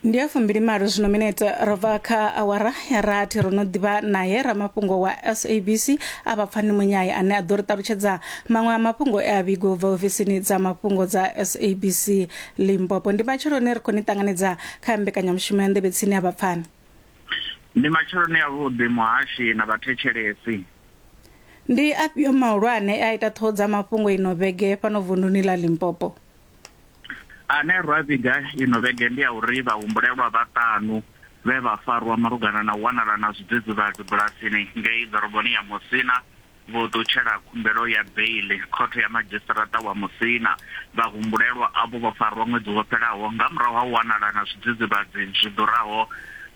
ndi ya fumbili malo zwino minete ro bva kha awara ya rathi ro no ḓivha naye ramafhungo wa sabc a vha pfani munyai ane a ḓo ri ṱalutshedza maṅwe a mafhungo e a vhigo bva ofisini dza mafhungo dza sabc limpopo ndi matsheloni ri khou ni ṱanganedza kha mbekanyamushumo ya nḓevhe tsini a vha pfani ndi matsheloni avhuḓi muhashi na vhathetshelesi ndi afhio mahulwane e a ita ṱhoho dza mafhungo ino vhege fhano vunduni ḽa limpopo ane ra vhiga ino vhege ndi a uri vhahumbulelwa vhaṱanu vhe vha farwa malugana na u wanala na zwidzidzivhadzi bulasini ngei ḓoroboni ya Musina vho ṱutshela khumbelo ya beiḽi khothe ya madzhisiṱaraṱa wa Musina. Vhahumbulelwa avho vho farwa ṅwedzi wo fhelaho nga murahu ha u wanala na zwidzidzivhadzi zwi ḓuraho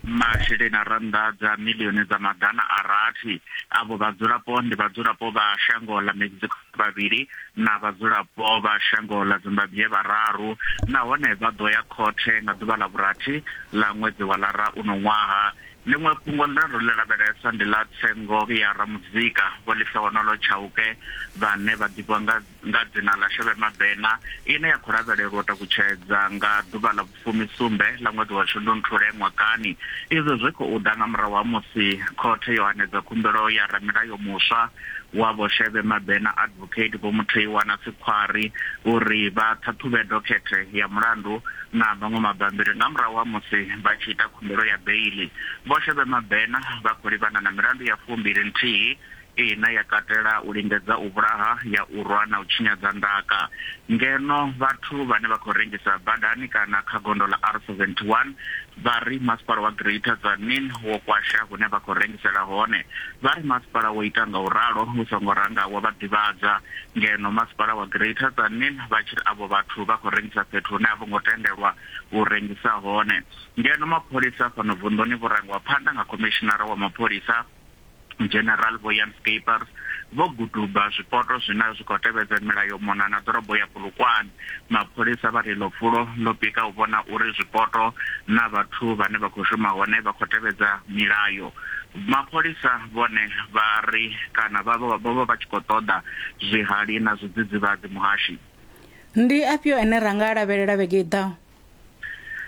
masheleni a rannda dza miḽioni dza maḓana a rathi. Avho vhadzulapo ndi vhadzulapo vha shango ḽa Mexico. vhavhili na vhadzulapo vha shango ḽa Zimbabwe vhararu nahone vha ḓo ya khothe nga ḓuvha ḽa vhurathi ḽa ṅwedzi wa Lara uno ṅwaha. Ḽiṅwe fhungo ḽine ro ḽi lavhelesa ndi ḽa tsengo ya ramuzika Vho Lifehonoolo Chauke vhane vha ḓivhiwa nga nga dzina ḽa Shebe Mabena ine ya khou lavhelelwa u takutshedza nga ḓuvha ḽa fumi-sumbe ḽa ṅwedzi wa Shundunthule ṅwakani. Izwi zwi khou ḓa nga murahu ha musi khothe yo hanedza khumbelo ya ramulayo muswa wa Vho Shebe Mabena Advocate Vho Mutheiwa na Sikhwari uri vha ṱhaṱhuvhe dokhethe ya mulandu na maṅwe mabambiri nga murahu ha musi vha tshi ita khumbelo ya beiḽi. Vho Shebe Mabena vha khou livhana na milandu ya fumbili-nthihi Ine ya katela u lingedza u vhulaha, ya u rwa na u tshinyadza ndaka. Ngeno vhathu vhane vha khou rengisa badani kana kha gondo ḽa R71 vha ri masipala wa Greater Tzaneen wo kwasha hune vha khou rengisela hone. Vha ri masipala wo ita nga u ralo u songo ranga wa vha ḓivhadza. Ngeno masipala wa Greater Tzaneen vha tshi ri avho vhathu vha khou rengisa fhethu hune a vho ngo tendelwa u rengisa hone. Ngeno mapholisa fhano vunḓuni vho rangiwa phanḓa nga khomishinara wa mapholisa, General William Skeepers, vho guduba zwipoto zwine zwi khou tevhedza milayo mona na ḓorobo ya Polokwane. Mapholisa vha ri iḽo fulo ḽo pika u vhona uri zwipoto na vhathu vhane vha khou shuma hone vha khou tevhedza milayo. Mapholisa vhone vha ri kana vha vha vho vha vha tshi khou ṱoḓa zwihali na zwidzidzivhadzi. Muhashi. Ndi afhio ane ra nga a lavhelela vhege i ḓaho?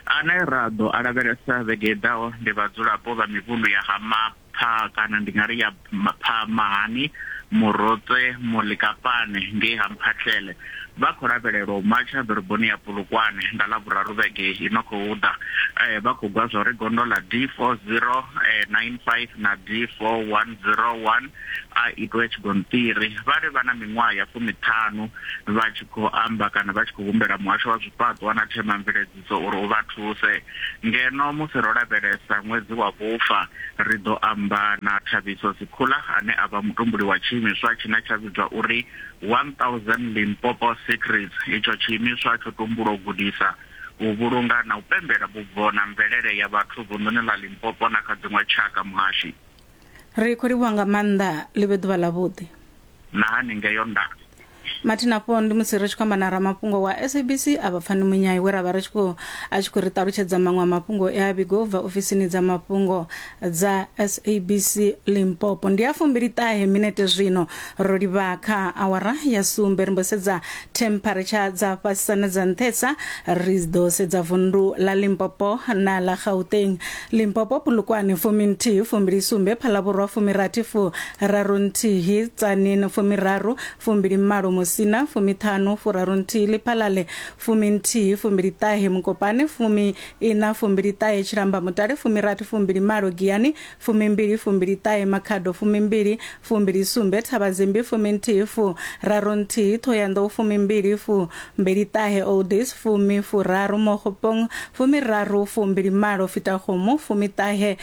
Ane ra ḓo a lavhelesa vhege i ḓaho ndi vhadzulapo vha mivhundu ya ha Mapha kana ndi nga ri ya Mapha Mahani, Murotse, Molikapane ngei ha Mphahlele. Vha khou lavhelelwa u matsha ḓoroboni ya Polokwane nga Ḽavhuraru vhege i no khou ḓa. Vha khou gwa zwa uri gondo ḽa D409 5 na D4101 a itwe tshigonṱiri. Vha ri vha na miṅwaha ya fumiṱhanu vha tshi khou amba kana vha tshi khou humbela muhasho wa zwifhaṱwa na themamveledziso uri u vha thuse. Ngeno musi ro lavhelesa ṅwedzi wa vhufa, ri ḓo amba na Thabiso Sikhula ane a vha mutumbuli wa tshiimiswa tshine tsha vhidzwa uri 1000 Limpopo Secrets. Itsho tshiimiswa tsho tumbulwa u gudisa, u vhulunga na u pembela vhubvo na mvelele ya vhathu vunḓuni ḽa Limpopo na kha dziṅwe tshaka. Muhashi. ri khou livhuwa nga maanḓa ḽi vhe ḓuvha ḽavhuḓi na haningeo nda mathi nafho ndi musi ri tshi khou amba na ramafhungo wa sabc a vha pfani munyai we ra vha ri tshi khou a tshi khou ri ṱalutshedza maṅwe a mafhungo e a vhigo u bva ofisini dza mafhungo dza sabc limpopo ndi a fumbili ṱahe minete zwino Ro livha kha awara ya sumbe ri mbo sedza temperature dza fhasisa na dza nṱhesa ri ḓo sedza vundu ḽa Limpopo na ḽa Gauteng Limpopo Pulukwane fumi nthihi fumbili sumbe Phalavhurwa fumi rathi fu raru nthihi Tsanin fumi raru fumbili malo Musina fumi ṱhanu fu raru nthihi Liphalale fumi nthihi fumbili ṱahe Mukopane fumi ina fumbili ṱahe Tshilamba Mutale fumi rathi fumbili malo Giyani Fumimbili, fumbiliṱahe, Makhado, fumimbili, fumbilisumbe, Thabazimbi, fuminthihi, fu, raru nthihi, Thohoyanḓou, fumimbili, fu, mbeliṱahe, Oldies, fumi, furaru, Mokgopong, fumiraru, fumbilimalo, Fitakgomo, fumiṱahe,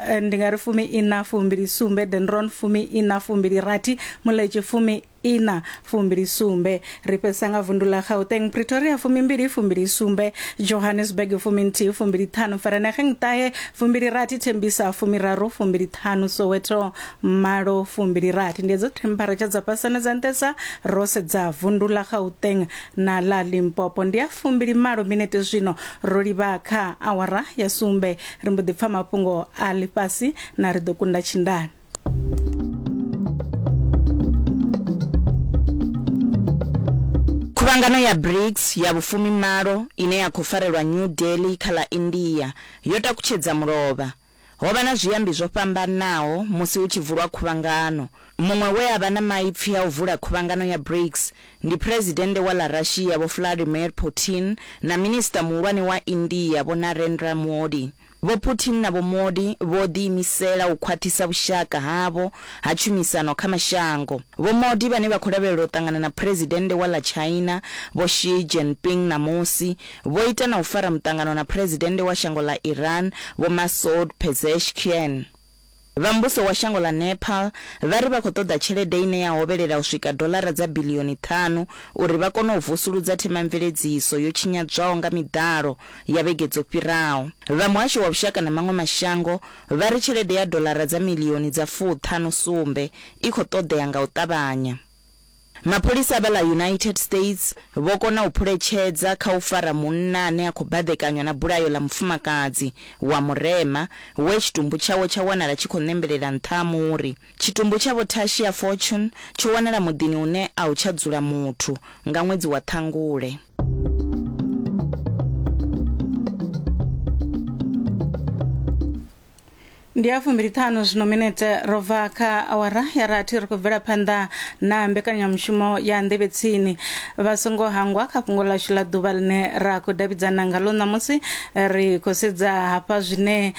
eh, ndi nga ri fumi-iṋa, fumbilisumbe, Denron, fumi-iṋa, fumbilirathi, Muletši, fumi ina fumbili sumbe ri fhedzisa nga vundu ḽa gauteng pretoria fumimbili fumbili sumbe johannesburg fuminthihi fumbili ṱhanu ferenegeng ṱahe fumbili rathi thembisa fumiraru fumbili ṱhanu soweto malo fumbili rathi ndi edzo temperature dza fhasane dza nṱesa ro sedza vundu ḽa gauteng na ḽa limpopo ndi a fumbili malo minete zwino ro livha kha awara ya sumbe ri mbo ḓi pfa mafhungo a ḽifhasi na ri ḓo kunda tshindani Khuvhangano ya BRICS ya vhufumi malo ine ya khou farelwa New Delhi kha ḽa India yo takutshedza mulovha. Ho vha na zwiambi zwo fhambanaho musi hu tshi vulwa khuvhangano. Muṅwe we a vha na maipfi a u vula khuvhangano ya BRICS ndi Phresidennde wa ḽa Russia Vho Vladimir Putin na Minisiṱa Muhulwane wa India Vho Narendra Modi. Vho Putin na Vho Modi vho ḓiimisela u khwaṱhisa vhushaka havho ha tshumisano kha mashango. Vho Modi vhane vha khou lavhelela u ṱangana na Phresidennde wa ḽa China Vho Xi Jinping ṋamusi, vho ita na u fara muṱangano na Phresidennde wa shango ḽa Iran Vho Masoud Pezeshkian. Vha muvhuso wa shango ḽa Nepal vha ri vha khou ṱoḓa tshelede ine ya hovhelela u swika doḽara dza biḽioni ṱhanu uri vha kone u vusuludza themamveledziso yo tshinyadzwaho nga miḓalo ya vhege dzo fhiraho. Vha muhasho wa vhushaka na maṅwe mashango vha ri tshelede ya doḽara dza miḽioni dza fuṱhanu sumbe i khou ṱoḓea nga u ṱavhanya. Mapholisa vha ḽa United States vho kona u phuletshedza kha u fara munna ane a khou baḓekanywa na bulayo ḽa mufumakadzi wa murema we tshitumbu tshawe tsha wanala tshi khou ṋembelela nṱha ha muri. Tshitumbu tsha Vho Tashia Fortune tsho wanala muḓini une a hu tsha dzula muthu nga ṅwedzi wa Ṱhangule. ndi ya fumbiliṱhanu zwino minete ro bva kha awara ya rathi ri khou bvela phanḓa na mbekanyamushumo ya nḓevhe tsini vha songo hangwa kha fhungo ḽashu ḽa ḓuvha ḽine ra khou davhidzana ngaḽo ṋamusi ri khou sedza hafha zwine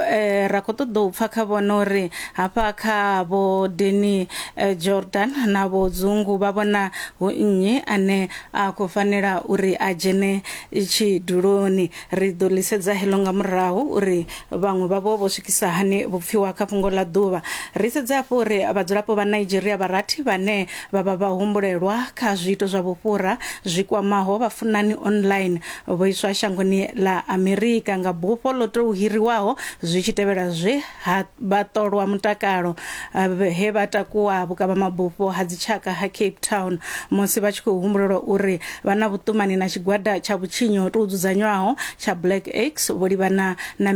eh, ra khou ṱoḓa u pfa kha vhona uri hafha kha vho deni eh, jordan na vho dzungu vha vhona hu nnyi ane a khou fanela uri a dzhene tshiduloni Ri ḓo ḽi sedza heḽo nga murahu uri vhaṅwe vhavho vho swikisa hani vhupfiwa kha fhungo ḽa ḓuvha. Ri sedze hafhu uri vhadzulapo vha Nigeria vha rathi vhane vha vha vhahumbulelwa kha zwiito zwa vhufhura zwi kwamaho vhafunani online vho iswa shangoni ḽa Amerika nga bufho ḽo tou hiriwaho zwi tshi tevhela zwe ha vhaṱolwa mutakalo he vha takuwa vhukavhamabufho ha dzitshaka ha cape town musi vha tshi khou humbulelwa uri vha na vhuṱumani na tshigwada tsha vhutshinyi ho tou dzudzanywaho tsha black x vho livhana na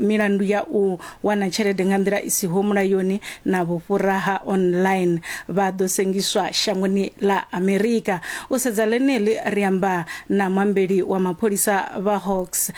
milandu ya u wana tshelede nga nḓila i siho mulayoni na vhufhura ha online vha ḓo sengiswa shangoni ḽa amerika u sedza ḽeneḽi ri amba na mwambeli wa mapholisa vha hawks